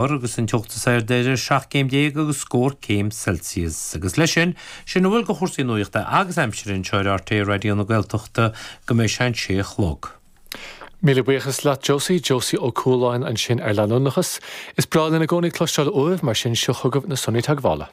Fómhair agus an teocht is airde idir 17 gcéim agus scór céim Celsius. Agus leis sin, sin a bhfuil de chúrsaí nuachta agus aimsire anseo ar RTÉ Raidió na Gaeltachta go mbeidh sé an sé a chlog. Míle buíochas leat Josie, Josie Ó Cualáin ansin ar leanúnachas. Is breá linn i gcónaí cloisteáil uaibh, mar sin seo chugaibh na sonraí teagmhála.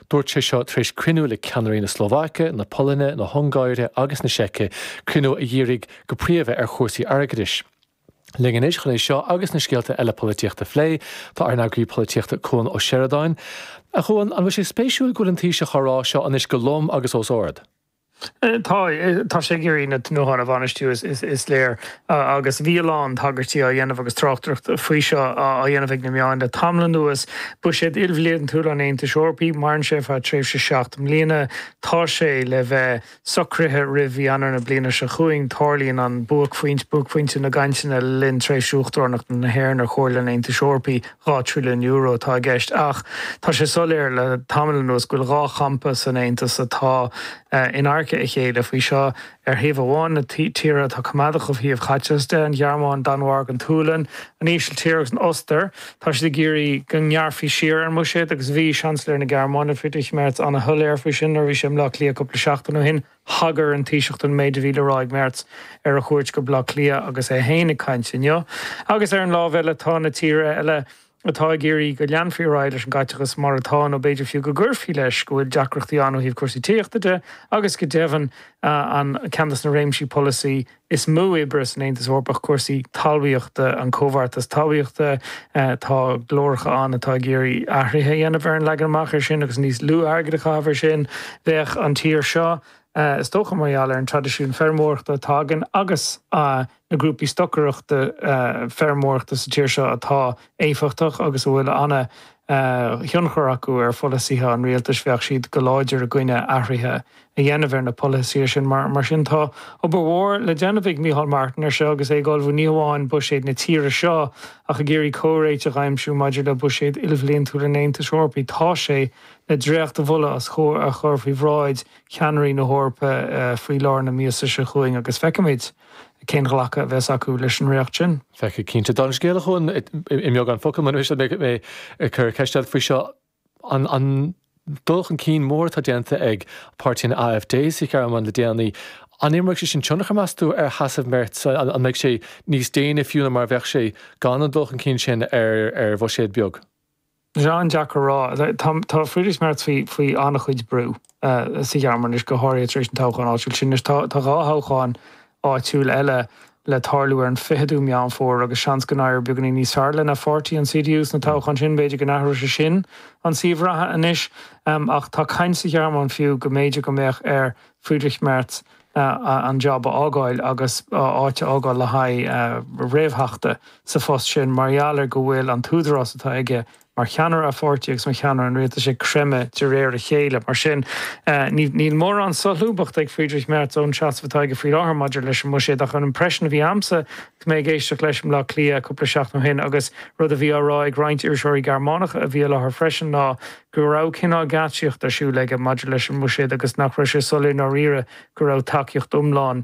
Dúirt sé seo tar éis cruinniú le ceannairí na Slóvaice, na Polainne, na hUngáire agus na Seice, cruinniú a dhírigh go príomha ar chúrsaí airgeadais. Linn anois chun é seo agus na scéalta eile polaitíochta a phlé, tá ár n-eagraí polaitíochta Cuan Ó Seireadáin. A Chuain, an bhfuil sé spéisiúil go bhfuil an Taoiseach á rá seo anois go lom agus os ard? Tá sé ag iarraidh na tnútháin a bhainistiú, is léir, agus bhí a lán tagairtí á dhéanamh agus tráchtaireacht faoi seo á dhéanamh ag na meáin le tamall anuas. Buiséad ilbhliantúil an Aontais Eorpaigh, maireann sé ar feadh tréimhse seacht mbliana, tá sé le bheith socraithe roimh mhí Eanáir na bliana seo chugainn, tarlaíonn buaicphointe na gcainteanna le linn tréimhse uachtaránachta na hÉireann ar Chomhairle an Aontais Eorpaigh. €2 trilliún atá i gceist ach tá sé soiléir le tamall anuas go bhfuil dhá champa san Aontas atá in adharca a chéile faoi seo. Ar thaobh amháin, na tíortha atá coimeádach ó thaobh chaiteachais de, an Ghearmáin, an Danmhairg, an tSualainn, an Ísiltír agus an Ostair, tá siad ag iarraidh go ngearrfaí siar ar an mbuiséad agus bhí Seansailéir na Gearmáine, Friedrich Merz, an-shoiléir faoi sin nuair a bhí sé i mBleá Cliath cúpla seachtain ó shin. Thagair an Taoiseach don méid a bhí le rá ag Merz ar a chuairt go Baile Átha Cliath agus é féin ag caint inniu, agus ar an lámh eile tá na tíortha eile atá ag iarraidh go leanfaí ar aghaidh leis an gcaiteachas mar atá, nó b'fhéidir fiú go gcuirfí leis, go bhfuil deacrachtaí ann ó thaobh cúrsaí tithíochta de agus go deimhin ceann de na réimsí polasaí Is mó oibre san Aontas Eorpach cúrsaí talmhaíochta, an Comhbheartas Talmhaíochta. Tá glóracha ann atá ag iarraidh athruithe a dhéanamh ar an leagan amach ar sin agus níos lú airgid a chaitheamh ar sin. Bheadh an tír seo, is dócha, mar gheall ar an traidisiún feirmeoireachta atá againn agus na grúpaí stocaireachta feirmeoireachta sa tír seo atá éifeachtach agus a bhfuil ana thionchar acu ar pholasaithe an rialtais, bheadh siad go láidir i gcoinne athruithe a dhéanamh ar na polasaithe sin. Mar sin tá obair mhór le déanamh ag Micheál Martin air seo agus é ag ullmhú ní hamháin buiséad na tíre seo ach ag iarraidh comhréiteach a aimsiú maidir le buiséad ilbhliantúil an Aontais Eorpaigh. Tá sé le dréachtmholadh a chur faoi bhráid cheannairí na hEorpa faoi lár na míosa seo chugainn agus feicfimid cén glacadh a bheas acu leis an ndréacht sin. Feicfidh cinnte. Tá an scéal chugainn i mbeagán focal. Mura miste, beidh mé ag cur ceiste ort faoi seo. an dul chun cinn mór atá déanta ag páirtí an AfD sa Ghearmáin le déanaí, an imreoidh sé sin tionchar, meas tú, ar sheasamh Merz? An mbeidh sé níos déine fiú ná mar a bheadh sé gan an dul chun cinn sin ar bhuiséad beag? Tá sé an-deacair a rá. Tá Friedrich Merz faoi an-chuid brú. sa Ghearmáin anois, go háirithe tar éis an toghcháin áitiúil sin. Anois, tá dhá thoghchán áitiúil eile le tarlú ar an 20ú Meán Fómhair agus seans go n-éireoidh beagáinín níos fearr lena pháirtí, an CDU, sna toghcháin sin. B'fhéidir go n-athróidh sé sin an suíomh reatha anois, ach tá caint sa Ghearmáin fiú go mb'fhéidir go mbeadh ar Friedrich Merz an jab a fhágáil agus a áit a fhágáil le haghaidh réamhtheachta sa phost sin mar gheall ar go bhfuil an t-údarás atá aige mar cheannaire a pháirtí agus mar cheannaire an rialtais ag creimeadh de réir a chéile. Mar sin, níl mórán solúbthachta ag Friedrich Merz ón seasamh atá aige faoi láthair maidir leis an mbuiséad. Ach an impression a bhí a'msa agus mé ag éisteacht leis i mBleá Cliath cúpla seachtain ó shin, agus rud a bhí á rá ag roinnt iriseoirí Gearmánacha a bhí i láthair freisin, ná go raibh cineál geáitsíocht ar siúl aige maidir leis an mbuiséad agus nach raibh sé soiléir ndáiríre go raibh tacaíocht iomlán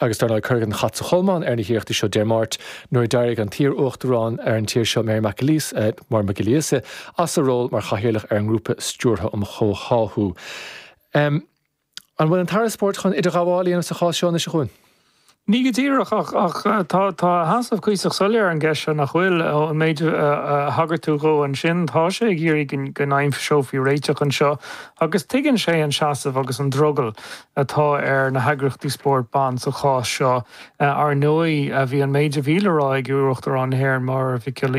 Agus dar ndóigh, cuireadh an chat sa cholmán ar na hiarrachtaí seo Dé Máirt nuair a d'éirigh an t-iar-uachtarán ar an tír seo, Mary McAleese, Máire Mhic Giolla Íosa, as a ról mar chathaoirleach ar an nGrúpa Stiúrtha um Chomhtháthú. An bhfuil an tAire Spóirt chun idirghabháil a dhéanamh sa chás seo anois, a Chuain? Ní go díreach, ach tá a sheasamh cuíosach soiléir ar an gceist seo, nach bhfuil? Ón méid a thagair tú dhó ansin, tá sé ag iarraidh go n-aimseofaí réiteach anseo, agus tuigeann sé an seasamh agus an drogall. atá ar na heagraíochtaí spóirt ban sa chás seo. Ar ndóigh, bhí an méid a bhí le rá ag iarUachtarán na hÉireann, Máire Mhic Giolla